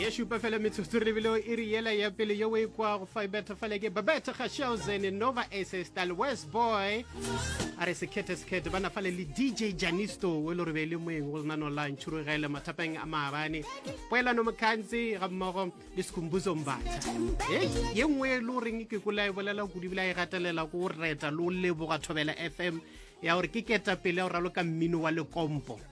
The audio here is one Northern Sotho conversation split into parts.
ye šupa fela metsotso re lebile e re yela ya pele yo o e kwago fa e betha fale ke babete ga shelzen nova asestal west boy a re sekhethe sekhethe ba nafale le dj janisto o e le gore be e le moeng go lenano la ntšhurugele mathapeng a maabane poelano mokgantse ga mmogo le sekhumbuzo mbatha ye nngwe e le goreng ke kola e bolela kudu ebile a e gatelela ko reta le o leboga thobela fm ya gore ke ketapele ya go raloka mmino wa lekompo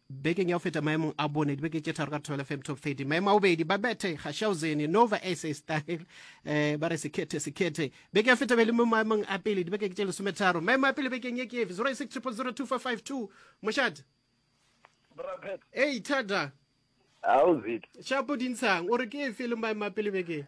Bekeng ya go feta maemong a bone dibeke tše tharo ka Thobela FM Top 30 maemo a bobedi ba bethe Gashauzeni Nova SA Style eh, ba re sekhethe sekhethe beke ya feta be le mo maemong a pele dibeke tše lesometharo maemo a pele bekeng ye ke efe 0600024552 mošate ei thada shapo dintshang o re ke efe le maemo a pele bekeng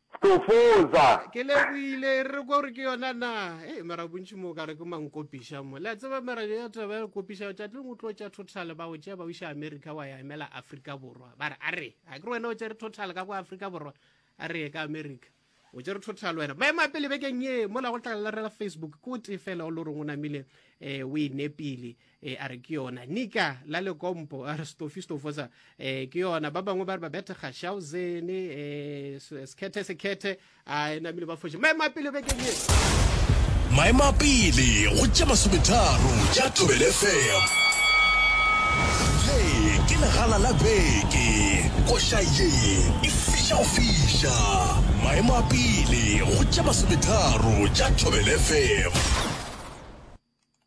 Stofoza. Ke lebohile, e re kwa gore ke yona na? Hei, mara bontši mo o ka re ke mankopiša mo. Le a tseba mara ya taba ya kopiša, tšatleng o tlo tša total ba o tšea ba o iša America wa ya emela Afrika Borwa. Ba re a re, a ke re wena o tšere total ka kwa Afrika Borwa, a re ye ka America. O tšere total wena. Maemo a pele bekeng ye, mola go tla lerela Facebook, ke o tee fela o lo reng o namile um o e nepile. e a re ke yona nika la lekompo a re stofistofosa e ke yona ba bangwe ba re ba bethe kgashaozen e sekhethe sekhethe a e namile ba foše maemo a pele bekeng e maemo a pele go tša masometharo tša tobele fm le ke legala la beke koša ye e fiša go fiša maemo a pele go tša masometharo tša tobele fm